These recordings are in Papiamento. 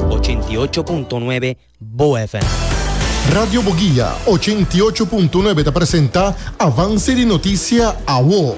Ochenta i ocho punto nuebe Bo FM. Radio Boguia ochenta i ocho punto nuebe ta presenta Avance di Noticia Awo.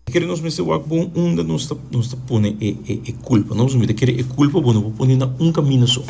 Kere nos mester wak bon unda nos ta nos ta pone e e e culpa no si mi ta kere e culpa bo no por pone na un camino so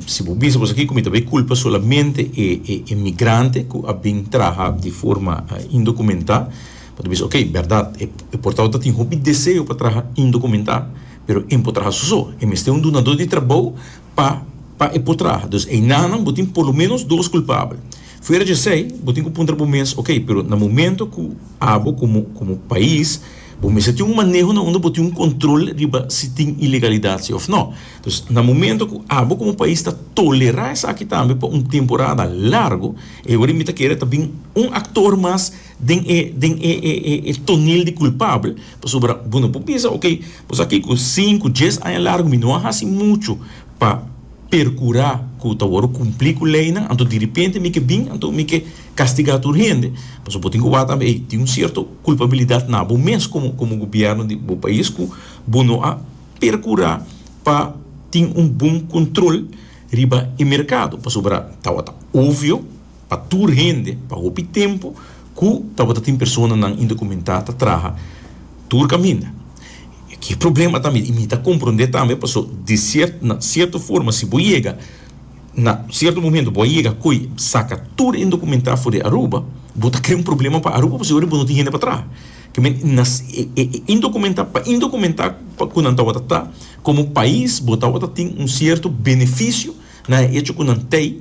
si bo bisa boso kiko mi ta bay culpa solamente e e e migrante cu a bin traha di forma indocumenta Bo ta bisa, Ok, bèrdat, e portao ta tin hopi deseo pa traha indokumentá, pero e no por traha su so. E mester un dunadó di trabou pa pa e por traha. Dus einanan bo tin por lo ménos dos kulpabel. Fuera di esei, bo tin ku puntra bo mes, Ok, pero na momentu ku abo komo komo pais bo mester tin un maneho na unda bo tin un kontrol riba si tin ilegalidat si òf nò. Dus na momentu ku abo komo pais ta tolerá esaki tambe pa un temporada largu, e ora mi ta kere ta bin un aktor mas, den e den e e e e tonel di kulpabel, pasobra bo no por bisa, ok, bo sa ke ku sinku, dies aña largu mi no a hasi muchu pa perkurá ku ta wòrdu kumplí ku leinan, anto diripente mi ke bin, anto mi ke kastigá tur hende. Pasobra bo tin ku wak tambe ei, tin un sierto kulpabilidat na bo mes komo komo gobièrnu di bo pais ku bo no a perkurá pa tin un bon kontrol riba e merkado, pasobra tabata obvio, pa tur hende pa hopi tempu ku tabata tin personanan indokumentá ta traha tur kaminda. Ki problema tambe i mi ta komprondé tambe pasó di sierto na sierto forma si bo yega na sierto momento bo a yega koe saka tur indokumentá for di Aruba bo ta krea un problema pa Aruba pasobra bo no tin hende pa traha ke men na e indokumentá pa indokumentá pa ku nan tabata ta komo pais bo tabata tin un sierto benefisio na e echo ku nan tei